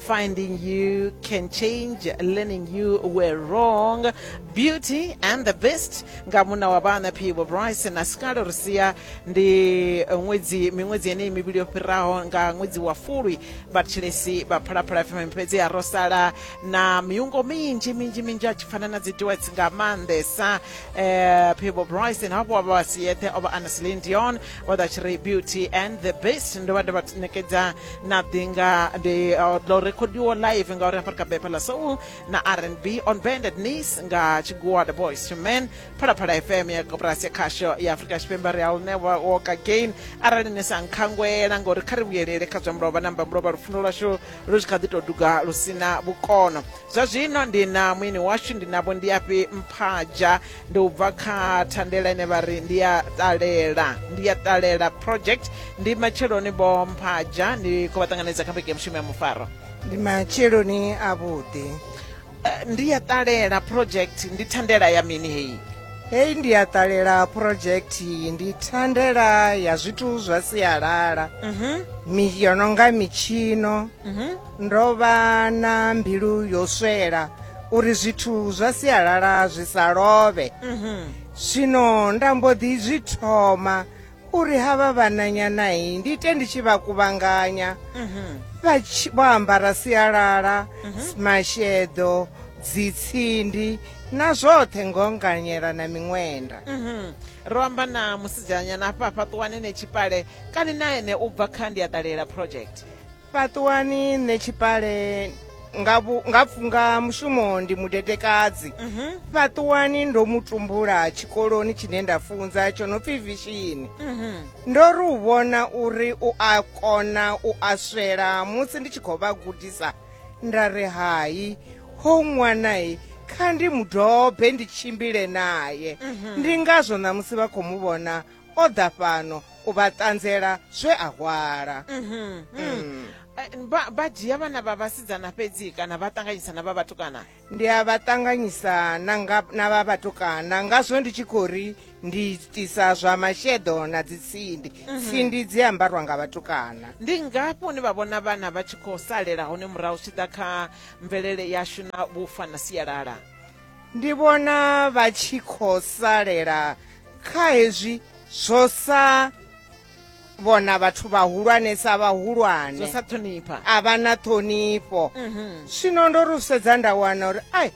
Finding you can change, learning you were wrong. Beauty and the Beast nga muna wa vhana Phibo Bryce na Scalo Rusia ndi ṅwedzi miṅwedzi yeneyi mivhili yo fhiraho nga ṅwedzi wa Fulwi vhatshilesi vha Phalaphala FM fhedzi ya ro sala na miungo minzhi minzhi minzhi a tshi fana na dzi duets nga maanḓesa eh, Phibo Bryce na havho vha si yeṱhe o vha Anasline Dion o ḓa tshi ri Beauty and the Beast ndo vha ndo vha ṋekedza na ḓi nga ndi uh, ḽo rekhodiwa live ngauri hafha ri kha bepha ḽa soul na rnb on banded knees nga tshigua the boys to men phalaphala fm ya koporasi ya khasho ya afurika tshipembe ri a u newa walk again arali ni sa nkhangwela ngauri kha ri vhuyelele kha zwa mulova na mbamulova lufuno lwashu lu tshi kha ḓi tou duga lu si na vhukono zwa zwino ndi na muini washu ndi navho ndiafhi mphaja Ndi u bva kha thandela ine vha ri ndi ya ṱalela, ndi ya ṱalela project. Ndi matsheloni Vho Mphaja ni khou vha ṱanganedza kha vhege ya mushumo ya mufaro. Ndi matsheloni a vhuḓi. Ndi ya ṱalela project ndi thandela ya mini heyi? Heyi ndi ya ṱalela project ndi thandela ya zwithu zwa sialala. Mi yo no nga mitshino. Ndo vha na mbilu yo swela uri zwithu zwa sialala zwi sa lovhe mhm. zwino nda mbo ḓi zwi thoma uri havha vhananyanayi ndi ite ndi tshi vha kuvhanganya mhm. vho ambara sialala mhm. masheḓo dzitsindi na zwoṱhe ngonganyela na miṅwenda ro amba na musidzanyana hafha fhaṱuwanene tshipale kani na ene u bva kha ndi a ṱalela project fhaṱuwani nṋe tshipale nga vhu- nga pfu- nga mushumo ndi mudedekadzi fhaṱuwani ndo mu tumbula tshikoloni tshine nda funza tsho no pfi vishini ndo ri u vhona uri u a kona u a swela musi ndi tshi khou vha gudisa nda ri hai ho ṅwanae kha ndi mudobe ndi tshimbile naye ndi ngazwo ṋamusi vha khou mu vhona o ḓa fhano u vha ṱanzela zwe a hwala Mhm, mm. Mm. Eh, vha vha dzhia vhana vha vhasidzana fhedzi kana vha ṱanganyisa na vha vhatukana ndi a vha ṱanganyisa na nga- na vha vhatukana ngazwo ndi tshi khou ri ndi itisa zwa masheḓo na dzitsindi tsindi dzi ambarwa nga vhatukana ndi ngafhi hune vha vhona vhana vha tshi khou salela hone murahu zwi tshi ḓa kha mvelele yashu na vhufa na sialala ndi vhona vha tshi khou salela kha hezwi zwo sa vhona vhathu vhahulwane sa zwo vhahulwane sa ṱhonipha a vha na ṱhonifho Mhm. zwino ndo ri u sedza nda wana uri ai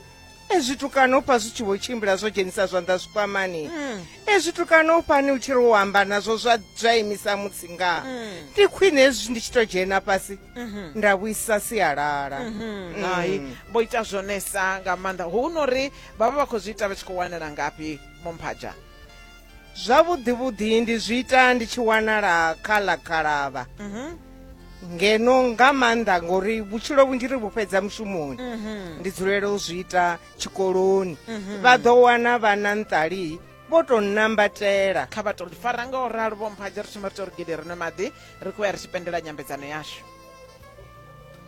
ezwi tukano u pfa zwi tshi vho tshimbila zwo dzhenisa zwanḓa zwikwamani Mm. ezwi tukana u fani u tshi ri u amba nazwo zwa zwa imisa mutsi nga mm. ndi mm. khwine ezwi ndi tshi to dzhena fhasi mm -hmm. nda vhuisa sialala mm -hmm. mm. hai vho ita zwonesa nga maanḓa hu no ri vhavha vha khou zwi ita vha tshi khou wanela ngafhi momphaja zwavhuḓi vhuḓi ndi zwi ita ndi tshi wanala kha ḽa khalavha mm -hmm. ngeno nga maanḓa ngori vhutshilo vhunzhi ri vhu fhedza mushumoni mm -hmm. ndi dzulela u zwi ita tshikoloni mhm. vha ḓo wana vhana nṱali vho tou nambatela kha vha tou fara nga u ralo vho mphadza ri thoma ri tou ri gede ri nwe maḓi ri khou ya ri tshi pendela nyambedzano yashu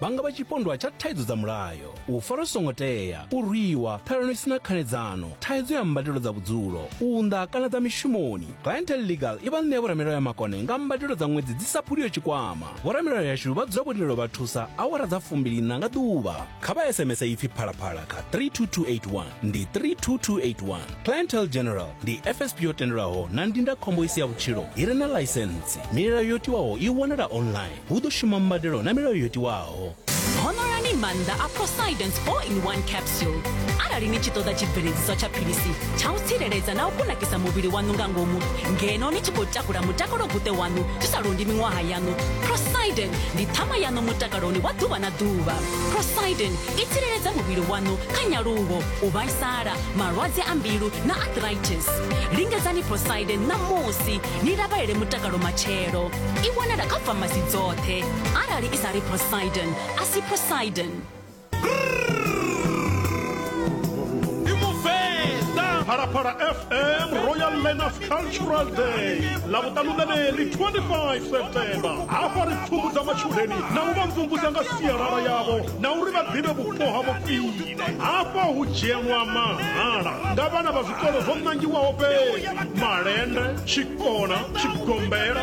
vha nga vha tshipondwa tsha thaidzo dza mulayo u fara songo tea u rwiwa ṱhalano i si na khanedzano thaidzo ya mbadelo dza vhudzulo u unḓa kana dza mishumoni clientel legal i vha ṋea vhoramilayo ya makone nga mbadelo dza ṅwedzi dzi sa phuliyo tshikwama vhoramilayo yashu vha dzula vho lindelo vha thusa awara dza fumbilina nga ḓuvha kha vha sms ipfi phalaphala kha 32281 ndi 32281 clientele general ndi fsp yo tendelwaho na ndindakhombo i si ya vhutshilo i re na ḽaisentsi milayo yo tiwaho i wanala online hu ḓo shuma mbadelo na milayo yo tiwaho honorani maanḓa a prosidence 4 in 1 capsule arali ni tshi ṱoḓa tshibveledziswa tsha philisi tsha u tsireledza na u kunakisa muvhili waṋu nga ngomu ngeno ni tshi khou takula mutakalo guṱe waṋu zwi sa londi miṅwaha yaṋu prosiden ndi ṱhama yaṋu mutakalo musaloni wa ḓuvha na ḓuvha prosidin i tsireledza muvhili waṋu kha nyaluwo u vhaisala malwadze a mbilu na arthritis lingedzani prosidin ṋamusi ni lavhelele mutakalo matshelo i wanala kha famasi dzoṱhe arali i sa ri prosidin a si prosidin phalaphala fm royal learners cultural day lavhuṱanu ḽeneḽi 25 septemba hafha ri pfumudza matshudeni na u vha mvumvusa nga sialala yavho na uri vha ḓivhe vhupo ha vhofhile hafha hu dzhielwa mahala nga vhana vha zwikolo zwo nangiwaho fhedzi malende tshikona tshigombela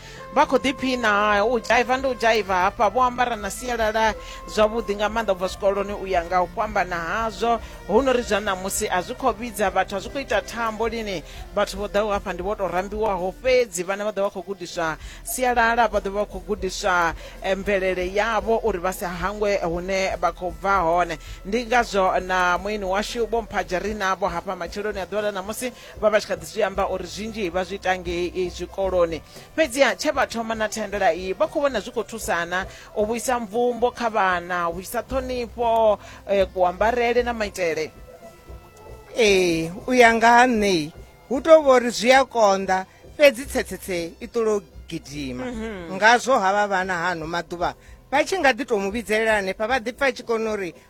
vha khou ḓiphina u dzhaiva ndi u dzhaiva hafha vho ambara na sialala zwavhuḓi nga maanḓa ubva zwikoloni u ya nga u fhambana hazwo hu no ri zwa ṋamusi a zwi khou vhidza vhathu a zwi khou ita thambo lini vhathu vho ḓaho hafha ndi vho tou rambiwaho fhedzi vhana vha ḓo vha khou gudiswa sialala vha ḓo vha khou gudiswa eh, mvelele yavho uri vha sa hangwe hune vha khou bva hone ndi ngazwo na muini washu vho mphajarina vho hafha matsheloni a ḓuvha ḽa ṋamusi vha vha tshi kha ḓi zwi amba uri zwinzhi vha zwi ita ngei zwikoloni fhedziha tshe vha thoma na thandela iyi vha khou vhona zwi khou thusana u vhuisa mvumbo kha vhana u vhuisa ṱhonifho eh, kuambarele na maitele ee u ya nga ha nṋei hu tou vha uri zwi a konḓa fhedzi tsetsetse i ṱolo gidima ngazwo havha vhana hano maḓuvha vha tshi nga ḓi tou mu vhidzelela hanefha vha ḓi pfa a tshi kona uri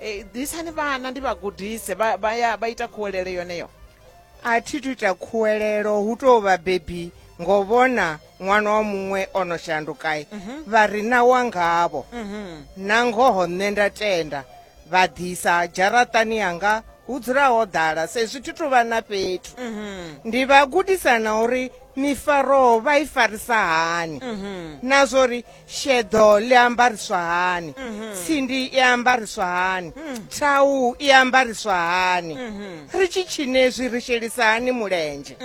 Eh, ḓisani vhana ndi vha gudise vha vha ya vha ita khuwelele yoneyo a thi tu ita khuwelelo hu tou vha bebi ngo vhona ṅwana wa muṅwe o no shandukai vha ri na wa ngavho na ngoho nṋe nda tenda vha ḓisa dzharaṱani yanga hu dzula ho ḓala sezwi thi tu vha na fhethu ndi vha gudisa na uri mifaroho vha i farisa hani na zwo ri sheḓo ḽi ambariswa hani mhm. tsindi i ambariswa hani mhm. thau i ambariswa hani mhm. ri tshi tshinezwi ri shelisa hani mulenzhe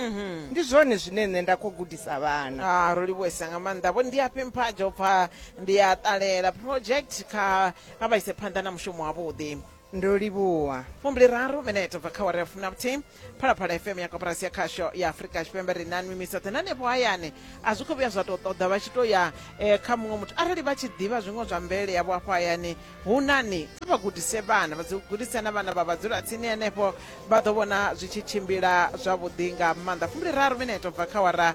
ndi zwone zwine nṋe nda khou gudisa vhana ah, ro livhuesa nga maanḓa vho ndi afhi mphadzo pfa ndi a ṱalela project kha vha ise phanḓa na mushumo wavhuḓi Ndo livhuwa. Fumbili raru minete bva kha awara ya fumi na vhuthihi phalaphala fm ya koporasi ya khasho ya afurika tshipembe ri na nwi misoṱhe na hanefho hayani a zwi khou vhuya zwa tou ṱoḓa vha tshi tou ya eh, kha muṅwe muthu arali vha tshi ḓivha zwiṅwe zwa mvelele yavho hafho hayani hu nani kha vha gudise vhana vha dzi gudise na vhana vha vha dzula tsini henefho vha ḓo vhona zwi tshi tshimbila zwavhuḓi nga maanḓa fumbili raru minete bva kha awara